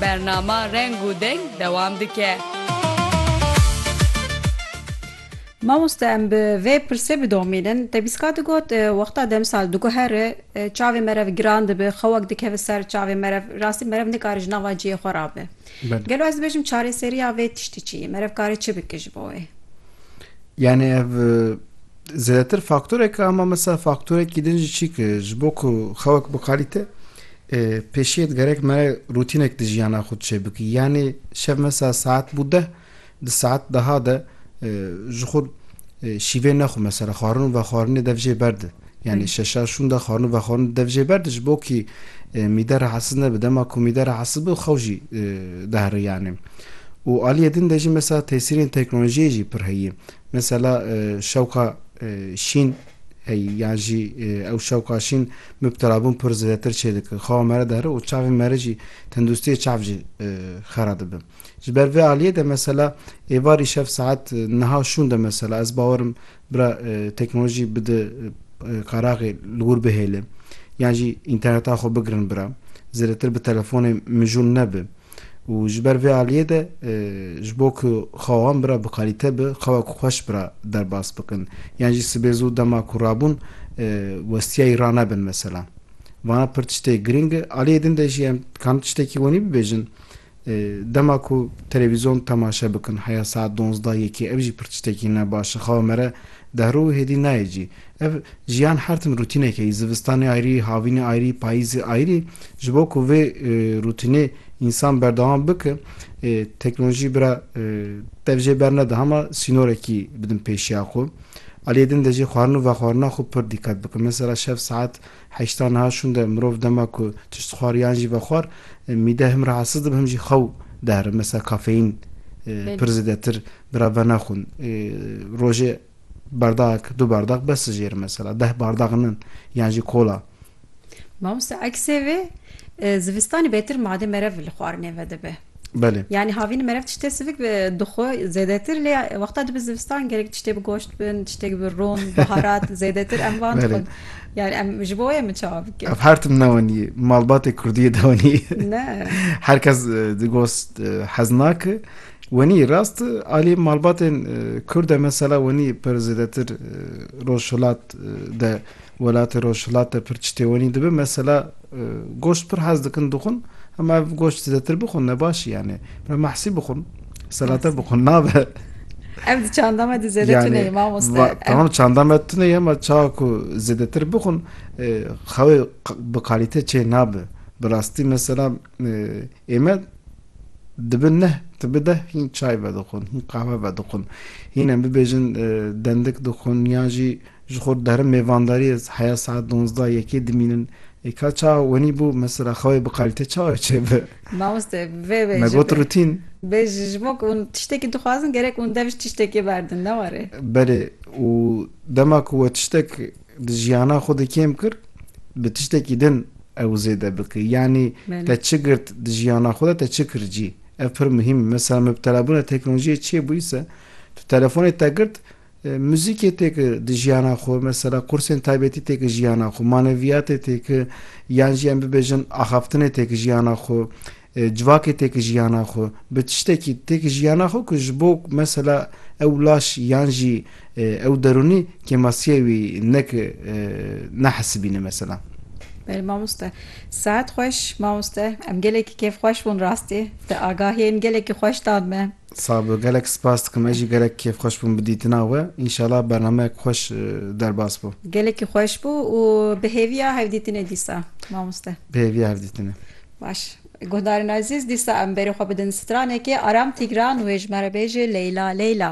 Bernama Reng û Deng dewam dike. Mamoste em bi vê pirsê bidomînin, te bîska digot wexta demsal diguhere çavê merev giran dibe, xewek dikeve ser çavê merev, rastî merev nikare ji nava cihê xwe rabe. Gelo ez dibêjim çareseriya vê tiştî çi ye? Merev kare çi bike ji bo wê? Yanî ev Zêdetir faktorek e ama mesela faktorekî din jî çî ki ji bo ku xewek biqalîte pêşiyê digerek mere rûtînek di jiyana xwe çê bikî. Yanê şev mesela saet bû deh di saet deha de ji xwe şîvê nexwe mesela xwarin û vexwarinê dev jê berde. Yani şeşa şûn de xwarin û vexwarin dev jê berde ji bo kî mîde rahatsiz nebe. Dema ku mîde rahatsiz bû xew jî dehre yani. Û aliyê din de jî mesela tesîrên teknolojiyê jî pir heye. Mesela şewqa şîn hey yan jî ew şewqa şîn mubtelabûn pir zêdetir çêdike xewa mere dihre û çavên mere jî tenduristiyê çav jî xera dibe. Ji ber vê aliyê de mesela êvar îşev saet niha şûn de mesela ez bawer im bira teknolojî bide qeraxê li wir bihêle yan jî înterneta xwe bigirin bira zêdetir bi telefonê mijûl nebe. û ji ber vê aliyê de ji bo ku xewa wan bira bi kalîte bi xewa ku xweş bira derbas bikin yan jî sibê zû dema ku rabûn westiyayî ranebin mesela vana pir tiştê girîng e. Aliyê din de jî em dikarin tiştekî wenî bibêjin dema ku televîzyon temaşe bikin heya saet donzda yekê ev jî pir tiştekî ne baş e xewa me re dehrû û hêdî nayê cî. Ev jiyan her tim rûtîneke yî, zivistanê ayrî, havînê ayrî, payîzê ayrî. Ji bo ku vê rûtînê însan berdewam bike, teknolojî bira dev jê bernede hema sînorekî bidin pêşiya xwe. Aliyê din de jî xwarin û vexwarina xwe pir dîqet bike. Mesela şev saet heştan niha şûn de mirov dema ku tişt dixwar yan jî vexwar, mîde him rahatsiz dibe him jî xew dihere. Mesela kafeîn pir zêdetir bira venaxwin. Rojê. Bardagek, du bardag bes dijêr mesela deh bardag nin yan jî kola. Mamoste eksê vê zivistanê bêtir madê merev li xwarinê ve dibe. Belê. Yanî havîn merev tiştê sivik dixwe zêdetir lê wexta dibe zivistan gerek tiştê bi goşt bin, tiştêk bi rûn, biharat zêdetir em van dixwin. Yani em ji bo wê min çawa bikin? Ev her tim ne wenî ye. Malbatê kurdiyê de wenî ye. Ne. Her kes di gost hez nake. Wenî rast alî malbatên Kurd e mesela wenî pir zêdetir rojhilat de welatê rojhilat de pir çitê wenî dibe mesela goşt pir hez dikin dixwin hema ev goşt zêdetir bixwin ne baş î yanê bila mahsî bixwin selate bixwin nabe. Ev di çanda me di zêde tuneyê mamoste. Tamam çanda me tuneyê hema çawa ku zêdetir bixwin xewê bi kalîte çê nabe. Bi rastî mesela Ême dibi neh tibi deh hîn çay vedixwin, hîn qahwe vedixwin. Hîn em bibêjin dendik dixwin yan jî ji xwe derin mêvandariyê heya saet donzda yekê dimînin. Ê ka çawa wenî bû mesela xewê bi qalîte çawa çêbe? Mamoste vê bê. Me got rutîn. Bê ji bo ku hûn tiştekî dixwazin gerek hûn dev ji tiştekê berdin ne were? Belê û dema ku we tiştek Di jiyana xwe de kêm kir, bi tiştekî din ew zêde bike. Yanî te çi girt di jiyana xwe de, te çi kir cî. Ev pir muhîm e. Mesela mubtelabûna teknolojiyê çê bûyî se, tu telefonê te girt, muzîkê tê ki di jiyana xwe, mesela qursên taybetî tê ki jiyana xwe, maneviyatê tê ki, yan jî em bibêjin axaftinê tê ki jiyana xwe. Civakê têk jiyana xwe bi tiştekî têk jiyana xwe ku ji bo mesela ew laş yan jî ew derûnî kêmasiyê wî nek nehesibîne mesela. Belê mamoste. Sehet xweş mamoste. Em gelekî kêf xweş bûn rastî. Te agahiyên gelekî xweş dan me. Sağ bi, gelek spas dikim. Ez jî gelek kêf xweş bûm bi dîtina we. Înşallah bernameyek xweş derbas bû. Gelekî xweş bû û bi hêviya hevdîtinê dîsa mamoste. Bi hêviya hevdîtinê. Baş. Guhdarên ezîz dîsa em berê xwe bidin stranekê aram tîgran wê ji me re bêjê Leyla Leyla.